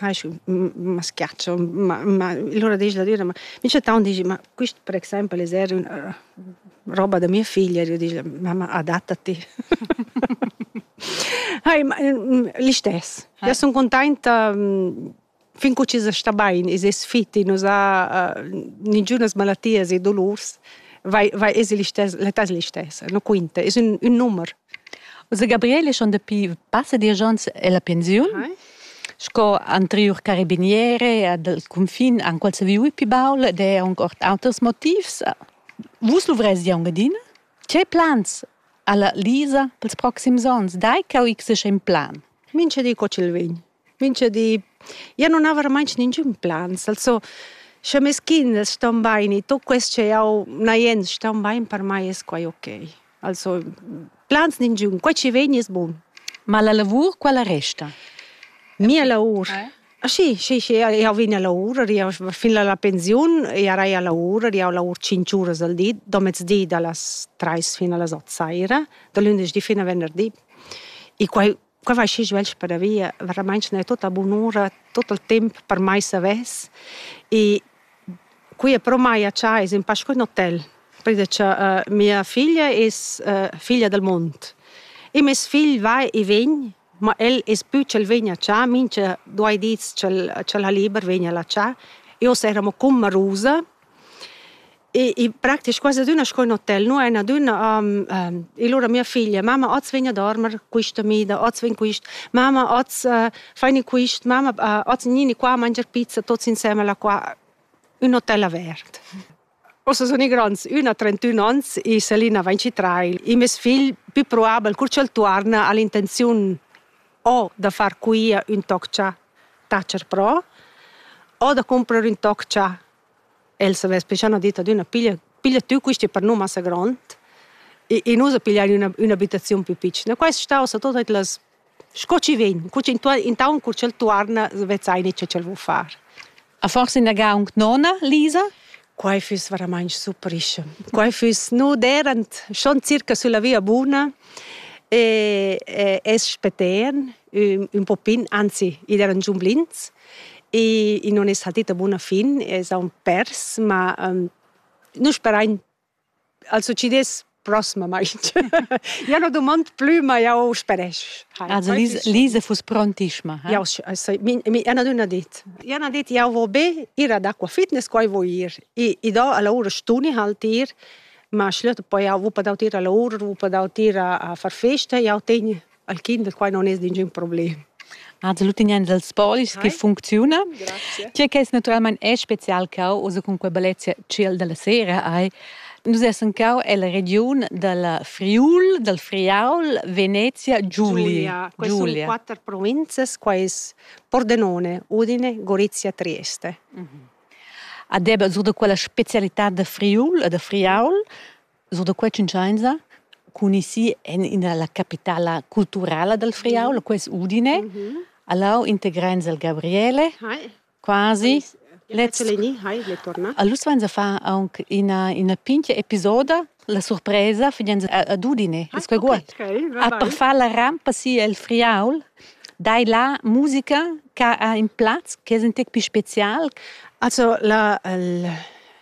ma schiaccio ma ma l'ura disch la düra ma mi chattaun disch ma quist per exaimpel es eir üna roba da mia figlia ed io disch mamma adattati Hai, l'istess. Ja sun cuntainta fin cu chi sta bain, es es fit, i nos ha nigünas malatias e dolurs, vai vai es l'istess, l'età es l'istessa, no quinta, es ün ün numer. Ussa Gabriele schon dapi passa diesch onns ella pensiun. Hai. Sco anteriur carabiniere dal cunfin han quels viu pi baul ed è aunc ord auters motivs. Vus luvrezi aunc adina? Che plans ha la Lisa pels proxims onns? Dai ch'eu x in plan. Mincha di co ch'el vegn. Mincha di. Jeu nun aver mai ningün plans, also sche mes kinders ston baini, tut quest che jau n'ha jens ston bain, per mai es quai okay. Also plans ningün, quai chi vegn es bun. Ma la lavur quella resta? Mia lavur? Schi, schi, schi, jau vegn a lavur, ed jau fin a la pensiun jarei a lavur, ed jau lavur tschinch uras al di, domezdi da las trais fin a las ot saira, da lündeschdi fin a venderdi. E quai Quei vai schi svelt padavia, veramain ne tutta bunura, tut il temp per mai savess. E qui e pro mai a Tschai es in pasch cun hotel, perché cha uh, mia figlia es uh, figlia del mond. E mes figl vai e vegn, ma el es più ch'el vegn a Tschai, mincha duai dis ch'el ch'el ha liber vegn a la Tschai. Io saremo cun Marusa E, e praktisch quasi adüna sco in hotel, nu en adüna um, um, e lura mia figlia, mama, oz vegn a dormer quista mida, oz vegn quist, mama, oz uh, faini quist, mama, uh, oz nini qua mangiar pizza tots insemmel qua, un hotel avert. Ossa sun i grands, üna ha 31 ans e Selina va in citrail. E mes figl, più probabel, cur ch'el tuorna, ha l'intenziun o da far quia ün toc cha tacher pro o da cumprer ün toc cha el savess pichà üna ditta adüna piglia piglia tü quista per nu massa grond e e nu sa pigliar üna ün'abitaziun plü pitschna. Quai es stà sa tuot las sco chi vegn, cur chi intuorn intaunt cur ch'el tuorna vezzai gnit cha ch'el vo far. A forse inaga aunc nona, Lisa? Quai füss veramaing surprische. Quai füss nu derant schon circa sulla via buna e, e es spetern ün, ün po pin, anzi, id eran giun blins e, e non es saltita buna fin, es aun pers, ma um, nu sperain al succidess prossmamaing. ja no domand plü, ma jau speresch. Also Lise, Lise fuss prontischma. Eh? Ja, Anna dunna dit. Anna dit, jau vo be ir ad acqua fitness, qua vo ir. I, i do a laura stuni halt ir, ma schliet poi jau vupa daut ir a laura, vupa daut ir a, a far festa, jau tegn Al kind da quai non es ningün problem. Az l'utignan dals polis che funcziuna. Tge che es naturalmain è spezial cau, oza cun quei bellezia chill dalla sera hai. Nus essan cau ella regiun dalla Friul, dal Friaul, Venezia, Giulia. Quai sun quatter provinzas, qua es Pordenone, Udine, Gorizia, Trieste. Mhm. Ad eba sur da quella specialità da Friul e da Friaul Sur da quei tschuntschainsa cun isi en ina la capitala culturala dal Friaul, quai es Udine. Allow integrains al Gabriele, quasi. Let's... Allus vainsa far aunc ina, ina pincha episoda la surpresa fidanza ad Udine. Es quei guad? A per far la rampa si el Friaul, dai la musica che ha in plaz che es in tec pi special. Also la, il,